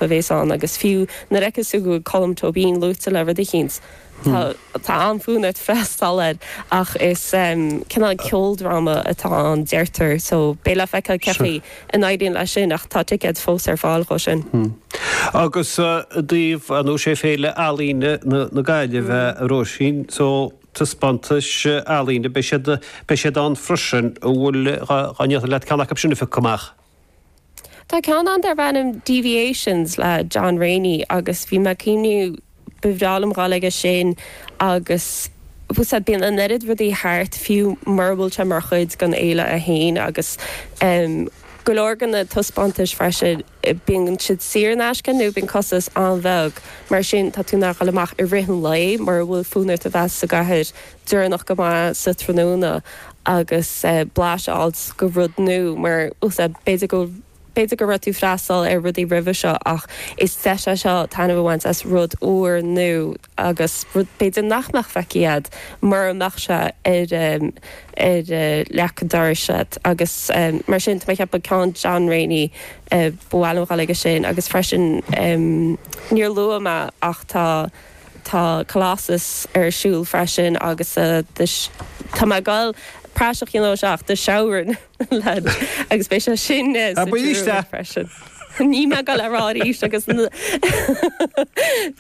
a bhéas ann agus fiú nuair fheiceas tú go bhfuil Colm Tóibín luaite le rud eicínt tá, tá an-fhonn ort freastal air ach is cineál ceoldráma atá ann deirtear so beidh le feiceáil cé chaoi a n-éiríonn leis sin ach tá ticéid fós ar fáil dhó sin. Agus i dtaobh, ar ndóigh sé Féile Ealaíne na Gaillimhe a Róisín, so taispeántais ealaíne beidh siad, beidh siad ann freisin an bhfuil, dhá ndéarfainn leat ceann acu sin a phiocadh amach? Tá ceann ann darb ainm Deviations le John Rainey agus bhí mé ag cuimhneamh, ba bhreá liom dhul aige sin agus sea, bíonn an oiread rudaí thart fiú mura bhfuil sé mar chuid den fhéile é féin agus go leor de na taispeántais freisin, bíonn siad saor in aisce nó bíonn costas an-bheag, mar sin tá tú in ann dhul amach i rith an lae mura bhfuil fonn ort a bheith sa gcathair. deireanach go maith sa tráthnóna agus blas a fháil go rud nua mar sórt sin. B'fhéidir go, b'fhéidir go raibh tú ag freastal ar rudaí roimhe seo ach is deis é seo taitneamh a bhaint as rud úr nua agus rud b'fhéidir nach mbeadh feicthe agat mura mbeadh sé ar, ar leac an dorais agat agus mar sin tá mé ag ceapadh ceann John Rainey ba mhaith liom a dhul aige sin agus freisin níor luaigh mé ach tá. Tá Colossus ar siúl freisin agus tá mé ag déanamh praiseach de anois ach do shamhraidh leid agus beidh sé sin sa Druid freisin. Níl mé ag gabháil á rá arís agus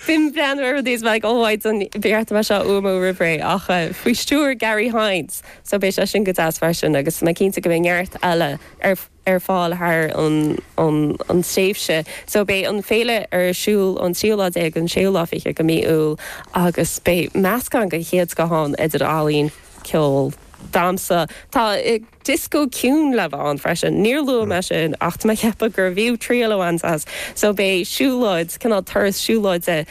b'in breathnú ar rudaí is mé ag óáid don bheartaibh seo uamó roimhré ach faoi stiúir Garry Hynes so beidh sé sin go deas freisin agus tá mé cinnte go mbeidh neart eile ar ar fáil thar an tréimhse so beidh an Féile ar siúl ón tríú lá déag go dtí an séú lá fichead go mí Iúil agus beidh meascán de chéad scoth ann idir ealaín, ceol, damsa, tá dioscó ciúin le bheith ann freisin, níor luaigh mé sin ach tá mé ag ceapadh gurbh fhiú triail a bhaint as so beidh siúlóid cineál turas siúlóide.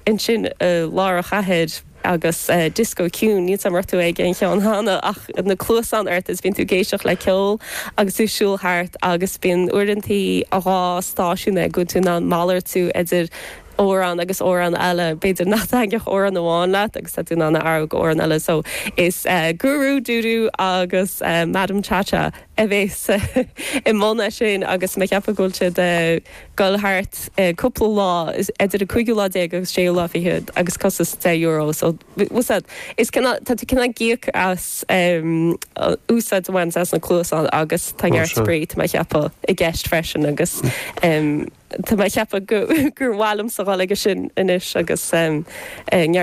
ansin i lár na cathrach agus disco ciúin, níl 's agam an raibh tú ag aon cheann cheana ach na cluasáin ort is bíonn tú ag éisteacht le ceol agus tú ag siúl thart agus bíonn uaireantaí dhá stáisiún agus tá tú in ann malartú idir amhrán agus amhrán eile, b'fhéidir nach dtaitneodh amhrán amháin leat agus tá tú in ann a athrú go amhrán eile so is Guru Dudu agus Madam Cha Cha a bhéas i mbun é sin agus mé ag ceapadh go bhfuil sé ag. Goil thart ar cúpla lá, idir an cúigiú lá déag agus séú lá fichead, agus costas deich euro air. So, is ea, Is cineál, tá tú cineál ag íoc as úsáid a bhaint as na cluasáin agus tá neart spraoi, tá mé a cheapadh, i gceist freisin agus tá mé a cheapadh gur mhaith liomsa dhul aige sin anois agus neart.